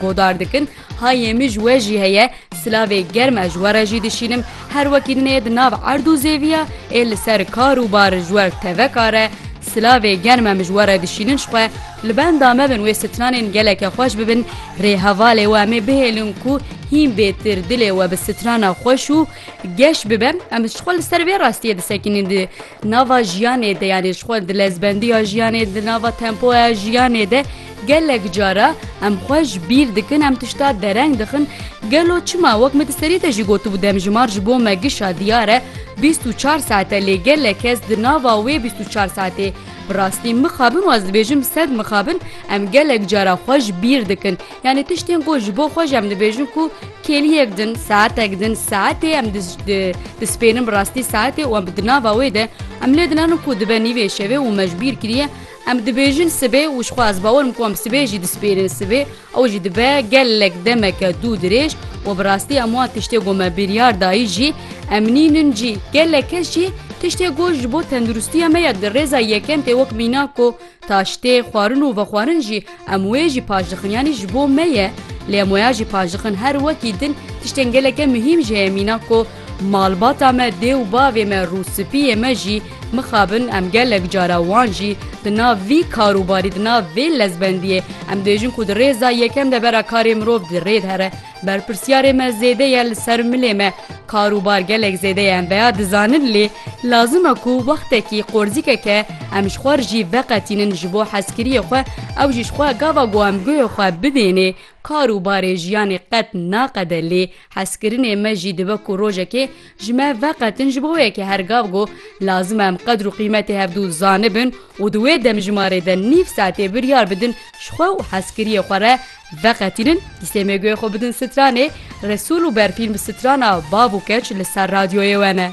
Godar dikin, Hayê min ji we jî heye, silavê germ ez ji we re jî dişînim, her wekî din ê di nav erd û zêviya, ê li ser kar û bar ji we teveka re, silavê germ em ji we re dişînin ji xwe, li benda me bin wê stranên geleke xweş bibin, rê hevalê we em ê bihêlin ku hîn bêtir dilê we bi strana xweş û geş bibe, em ji xwe li ser vê rastiyê disekinin di nava jiyanê de yanê ji xwe di lezbendiya jiyanê di nava tempoya jiyanê de, Gelek cara em xwe ji bîr dikin, em tişta dereng dixin, gelo çima? Wek min di serî de jî gotibû demjimar ji bo me gişa diyar e, bîst û çar saet e lê gelek kes di nava wê bîst û çar saetê bi rastî mixabin û ez dibêjim sed mixabin em gelek cara xwe ji bîr dikin. Yanî tiştên ku ji bo xwe jî em dibêjin ku kêliyek din, saetek din, saetê em dispênin bi rastî saetê û em di nava wê de em lê dinanin ku dibe nîvê şevê û me ji bîr kiriye, Em dibêjin sibê û jixwe ez bawer im ku em sibê jî dispêrin sibê ew jî dibe gelek demeke dû dirêj û bi rastî em wan tiştê ku me biryar dayî jî em nînin cî. Gelek kes jî tiştê ku ji bo tenduristiya me ye di rêza yekem tê wek mîna ku taştê, xwarin û vexwarin jî Em wê jî paş dixin yanî ji bo me ye lê em waya jî paş dixin her wekî din tiştên geleke muhîm ji heye mîna ku malbata me dê û bavê me rûspiyê me jî mixabin em gelek cara wan jî di nav vî karûbarî di nav vê lezbendiyê em dibêjin ku di rêza yekem de bera karê mirov di rê de re Berpirsyarê me zêde ye li ser milê me. Kar û bar gelek zêde ye em veya dizanin lê lazim e ku wextekî qorzîkeke em ji xwe rijî veqetînin ji bo hezkiriyê xwe ew jî ji xwe gava ku em guhê xwe bidênê kar û barê jiyanê qet naqede lê hezkirinê me jî dibe ku rojekê Ji me veqet in ji bo yekê her gav got, lazim e em qedr û qîmetê hevdû zanibin û di wê demjimmarê de nîv saetê biryar bidin ji xwe û hezkiriyê xwe re veqetînin, dîsêmê guhê xwe bidin stranê Resûl û berfîn bi strana Bav û Keç li ser radyoyê we ne.